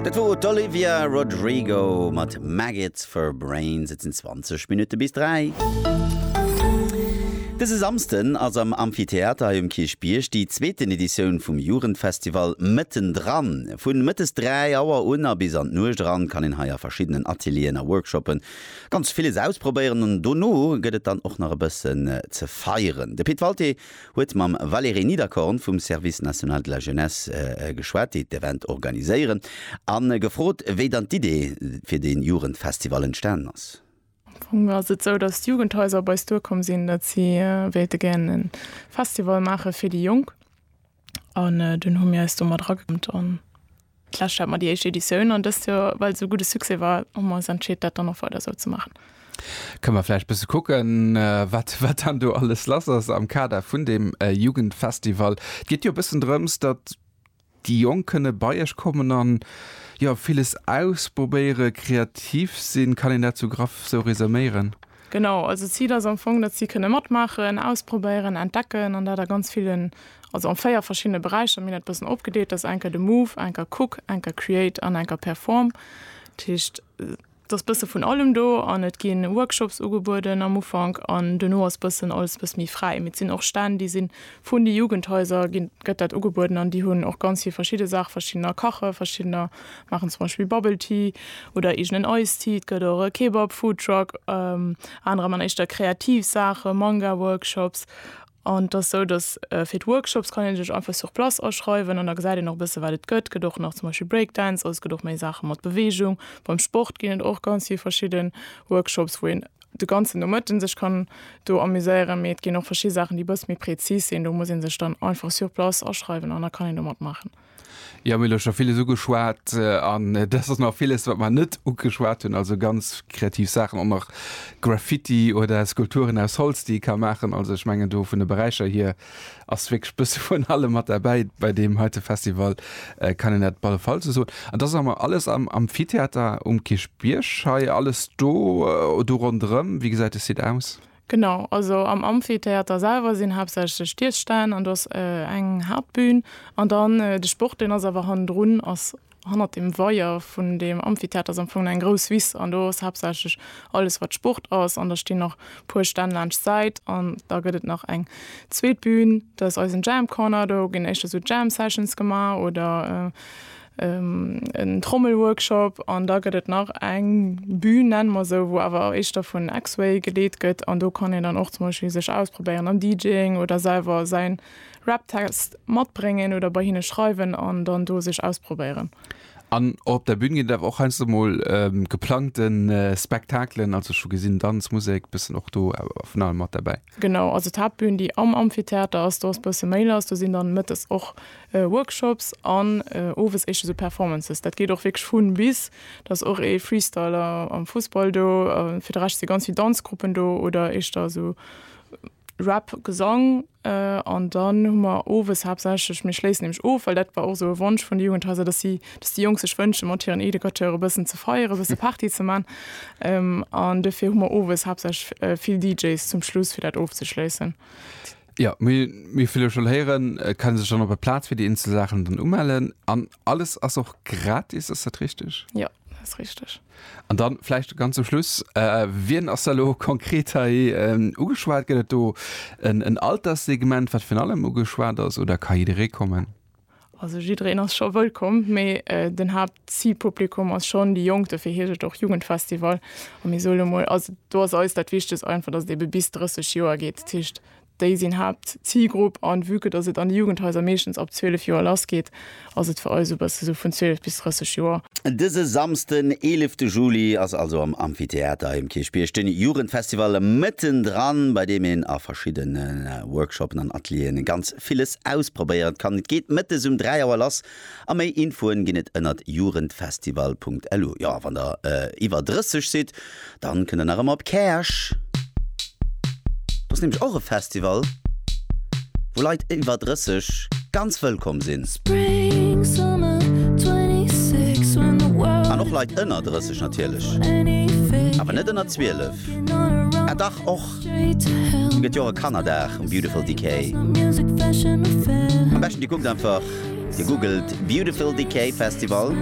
Dat wor d'Olivia Rodrigo mat Maggots for Brains. Et sinn 20 Minutte bis 3. Dëse Samsden ass am Amphitheater hei um Kierchbierg déi zweeten Editioun vum Jugendfestival Mëtten dran. Vu mëttes 3 Auer un a bis an d'Nuecht eran kann een hei a verschiddenen Atelieren a Workshoppe ganz villes ausprobéieren an dono gëtt et dann och nach e bëssen ze feieren. De Pit Walté huet mam Valeré Niederkorn vum Service National de la Jeunesse geschwat, déi d'Event organiséieren, a gefrot, wéi dann d'Idee fir de Jugendfestival entstanen ass. Am Fong ass et esou, datt d'Jugendhaiser op eis duerkomm sinn, datt si wéilte gären e Festival maache fir déi Jonk. An dunn hu mir eis do mat erageklappt. D'lescht hat mer déi éischt Editioun an dëst Joer, well et esou gudde Succès war, hu mer ons entscheet, dat dann och weider esou ze maachen. Kënne mer vläicht bësse kucken, wat, wat dann do alles lass ass am Kader vun deem Jugendfestival? Et geet jo e bëssen drëms, datt déi Jonk kënne bei iech kommen a jo, villes ausprobéieren, kreativ sinn. Kann een dat esou graff esou resuméieren? Genau, also d'Zil ass am Fong, datt si kënne matmaachen, ausprobéieren, entdecken an dat a ganz villen, also a véier verschiddene Beräicher. Mir hunn dat e bëssen opgedeelt, dat ass eng Kéier de Move, eng Kéier Cook, eng Kéier Create an eng Kéier Perform. Dat heescht, et ass e bësse vun allem do an et gi Workshops ugebueden am Ufank an duerno ass e bëssen alles e bësse méi fräi. Mee et sinn och Stänn, déi si vun de Jugendhaiser, ginn, gëtt dat ugebueden an déi hunn och ganz vill verschidde Saache, verschiddener kache, verschiddener. Maachen zum Beispill Bubble Tea oder eegenen Ice Tea. Et gëtt och e Kebab Foodtruck. Anerer man éischter kreativ Saachen, Manga Workshops. An et ass sou, dass fir d'Workshops kann een sech einfach sur place aschreiwen an da gesäit een och e bësse wat et gëtt. Gëtt och nach zum Beispill Break Dance, also et gëtt och méi Saache mat Beweegung. Beim Sport ginn et och ganz vill verschidde Workshops, wou een de ganzen Nomëtten sech kann do amuséieren. Mee et ginn och verschidde Saachen, déi e bësse méi prezis sinn. Do muss ee sech dann einfach sur place aschreiwen an da kann een do matmaachen. Jo, mir hu elo scho villes ugeschwat an et ass och nach villes, wat mer net ugeschwat hunn, also ganz kreativ Saachen, och nach Graffiti oder Skulpturen aus Holz, déi ee ka maachen. Also ech mengen do vun de Beräicher hier ass wierklech bësse vun allem mat derbäi bei deem heite Festival, kann een dat op alle Fall esou soen. An da si mer alles am Amphitheater um Kierchbierg hei, alles do, do ronderëm. Wéi gesäit de Site aus? Genau, also am Amphitheater selwer sinn haaptsächlech d'Iesstänn an do ass eng Haaptbühn. An dann de Sport, deen ass awer hannendrun, ass hannert dem Weier vun deem Amphitheater, ass am Fong eng grouss Wiss an do ass haaptsächlech alles, wat Sport ass. An da stinn nach e puer Stänn laanscht d'Säit an da gëtt et nach eng zweet Bühn, dat ass eisen Jam Corner. Do ginn éischter sou Jam Sessions gemaach oder en Trommelworkshop an da gëtt et nach eng Bühn, nenne mer esou, wou awer éischter vun X-Way geleet gëtt an do kann een dann och zum Beispill sech ausprobéieren am DJing oder selwer säin Rap-Text matbréngen oder bei hinne schreiwen an dann do sech ausprobéieren. An och op der Bühn ginn et awer och heiansdo mol geplangte Spektakelen, also ech hu gesinn, Danz, Musek, bëssen och do awer vun allem mat derbäi. Genau, also d'Haaptbühn, déi am Amphitheater ass, do ass bësse méi lass, do sinn dann mëttes och Workshops an owes éischter sou Performances. Dat geet och wierklech vun bis. Da ass och ee Freestyler am Fussball do. Fir de Rescht si ganz vill Danzgruppen do oder éischter esou Rap, Gesang. An dann hu mer owes haaptsächlech, mir schléissen nämlech of, well dat war och esou e Wonsch vun de Jugendhaiser, datt si, datt déi Jonk sech wënsche mat hiren Educateure e bëssen ze feieren, e bësse Party ze man. An dofir hu mer owes haaptsächlech vill DJs zum Schluss, fir dat ofzeschléissen. Jo, mee wéi vill ech schon héieren, kann ee sech dann op der Plaz fir déi eenzel Saachen dann umellen an alles ass och gratis, ass dat richteg? Jo, dat ass richteg. An dann vläicht ganz zum Schluss, wien ass da elo konkret hei ugeschwat? Gëtt et do en Alterssegment wat virun allem ugeschwat ass oder ka jidderee kommen? Also jiddereen ass scho wëllkomm, mee den Haaptzilpublikum ass schonn déi Jonk, dofir heescht et och Jugendfestival. A mir sole mol also do ass eis dat Wichtegst einfach, datt et ebe bis 30 Joer geet. Dat heescht, déi sinn Haaptzilgrupp an vue que datt et an de Jugendhaiser meeschtens ab 12 Joer lass geet, ass et fir eis esou e bësse sou vun 12 bis 30 Joer. Dëse Samsden, 11 Juli ass also am Amphitheater im Kirchbierg den Jugendfestival mëttendran, bei deem een a verschiddene Workshoppen an Atelieren ganz Fest villes ausprobéieren kann. Et geet mëttes um 3 Auer lass a méi Infoen ginn et ënnert jugendfestival.lu. Jo a wann der iwwer 30 sidd, dann kënnt der nach ëmmer op Käerch. Do ass nämlech och e Festival, wou Leit iwwer 30 ganz wëllkomm sinn. An och Leit ënner 30 natierlech, awer net ënner 12. Ah dach och! Gëtt jo och e Kannerdag um Beautiful Decay. Am beschten dir kuckt einfach, dir googelt Beautiful Decay Festival.